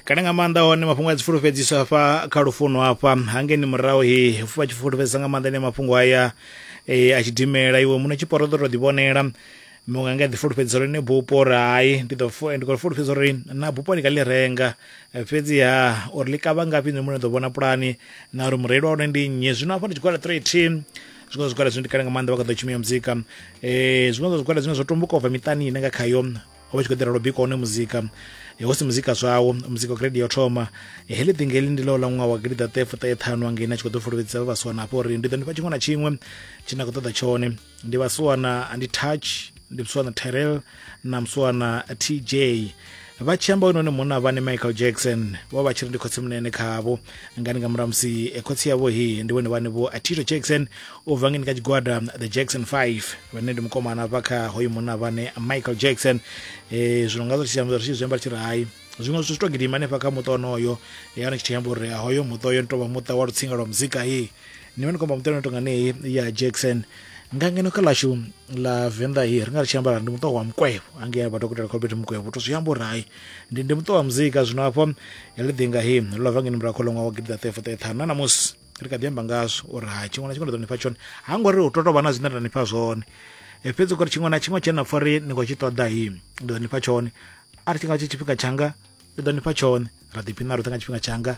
kale nga maanḓa hone mafhungo a dzifulufhedziso hafha kha lufuno hafha hangeni murahu he vha tshi fulufhedzisa nga maanḓa ene mafhungo aya e, a tshidimela iwe muṋe tshiporo ḓo to ḓivhonela muṅwe ange a ḓifulufhedzisa uri ne bupo uri hai ndi ḓo fu- ndi khou fulufhedzisa uri na bupo ndi nga ḽi renga Eh, fhedziha uri ḽi kavha ngafhi nṋe muṋe ḓo vhona pulani na uri mureili wa hone ndi nnyi zwino hafha ndi tshigwada 13 zwiṅwe zwa zwigwada zwine ndi kale nga maanḓa vha kha ḓo tshumela muzika um zwiṅwe zwa zwigwada zwine zwo tumbuka u bva miṱani ine nga khayo ho vha tshi khou eḓela lwo bika one muzika hu si muzika zwawo muzika wa grade yo thoma heḽi ḓinga heḽi ndi ḽo ḽa ṅwaha wa gidiḓaṱahe fuṱahe ṱhanu angei na tshi khou ḓo fulufhedzisa vha vhasiwana hafho uri ndi ḓo ndi fha tshiṅwe na tshiṅwe tshi na khou ṱoḓa tshone ndi vhasiwana ndi touch ndi musiwana terrell na musiwana tj vha tshi amba hone munna vhane michael jackson vho vha tshi ri ndi khotsi munene khavho ngani nga murahu musi eh, khotsi yavho hi ndi vhone vhane vho atito jackson u bva ngeni kha tshigwada the jackson 5 vhane ndi mukomana vha kha hoyu munna vhane michael jackson eh, zwino nga zwo tshisiamba ri tshi zwiamba tshi ri hayi zwiṅwe zwithu zwi to gidima hanefha kha muṱa onoyo ya ni tshi amba uri ah, hoyo muṱa oyo ni tovha muṱa wa lutsinga lwa muzika ye ni vha ni khomba muṱa no tonga neyi ya jackson nga ngeno kha ḽashu ḽa venḓa ye ri nga ri tshi ambara ndi muṱa wa mukwevho angea vhadokotela kholbert mukwevho to zwi amba uri hayi ndi ndi muṱa wa muzika zwino hafho heḽi ḓinga he ḽo bva ngeni murahu kha ḽo ṅwaha wa gidi ḓa 34 na ṋamusi ri kha ḓi amba ngazwo uri ha tshiṅwe na tshiṅwe nda ḓo nifha tshone ha ngo ri hu to tovha na zwine nda nifha zwone e, fhedzi kori tshiṅwe na tshiṅwe tshena pfa ri ni khou tshi ṱoḓa hi ndi ḓo nifha tshone a ri tshi nga tshi tshifhinga tshanga ndi ḓo nifha tshone ra ḓiphina roṱhe nga tshifhinga tshanga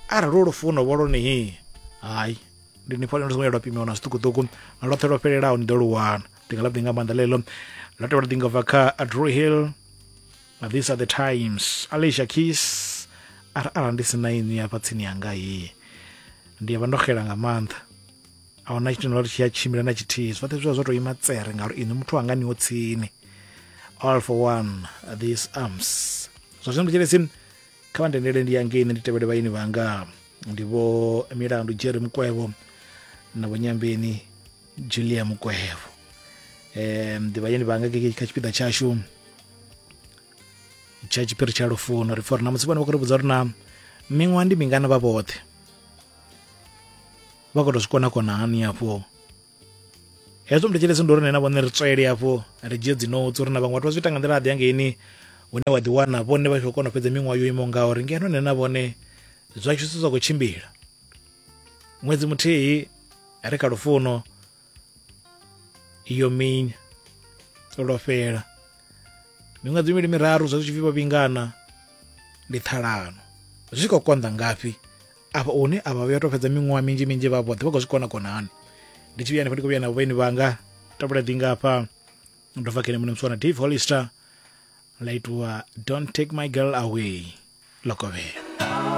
arali hu lufuno vho loni hi hayi ndi ni pfa lino songo ya lwa pimiwa na zwiṱukuṱuku lwoṱhe lwo fhelelaho ni ḓo lu wana ndi nga ḽa ḓi nga maanḓa ḽeḽo ḽa tevhela ḓi nga bva kha adrew hill Now these are the times Alicia Keys ara ara ndi sina inwi hafha tsini yanga hii ndi vha ndo xela nga maanḓa a huna tshithu ndori tshi ya tshimbila na tshithihi zwoṱhe zwi vha zwo tou ima tsere ngauri inwi muthu wanga niwo tsini all for one these arms zwa zwino nditshelesi kha vha ndendele ndi yangeini ndi tevhele vhaini vhanga ndi vho milandu jerry mukwevho na vho nyambeni julia mukwehevo um ḓivhanye ndi vhanga keke kha tshipiḓa tshashu tsha tshiphiri tsha lufuno ri pfa uri na musi vhone vha khou ri vhudza uri na miṅwaha ndi mingana vha vhoṱhe vha khou tou zwi kona kona hani afho hezwo mndu tshelesi ndi uri nena vhone ri tswele afho ri dzhie dzinotsi uri na vhaṅwe vhathu vha zwi ita nga nḓila aḓi angeini hune wa ḓiwana vhone vha tshi khou kona u fhedza miṅwaha yo imaho ngauri ngeno nena vhone zwa tshi zwi sa khou tshimbila ṅwedzi muthihi ri kha lufuno iyo minya lwo fhela miṅwedzi mivhili miraru zwa zwi tshi pfi vho vhingana ndi ṱhalano zwi khou konḓa ngafhi afha hune a vha vhuya tou fhedza miṅwaha minzhi minzhi vha vhoṱhe vha khou zwi kona kona hani ndi tshi vhuya hanefho ndi khou vhuya na vhaeni vhanga tabula dinga afha ndo bva kene muṋe muswana dave hollister la itiwa don't take my girl away lokovhela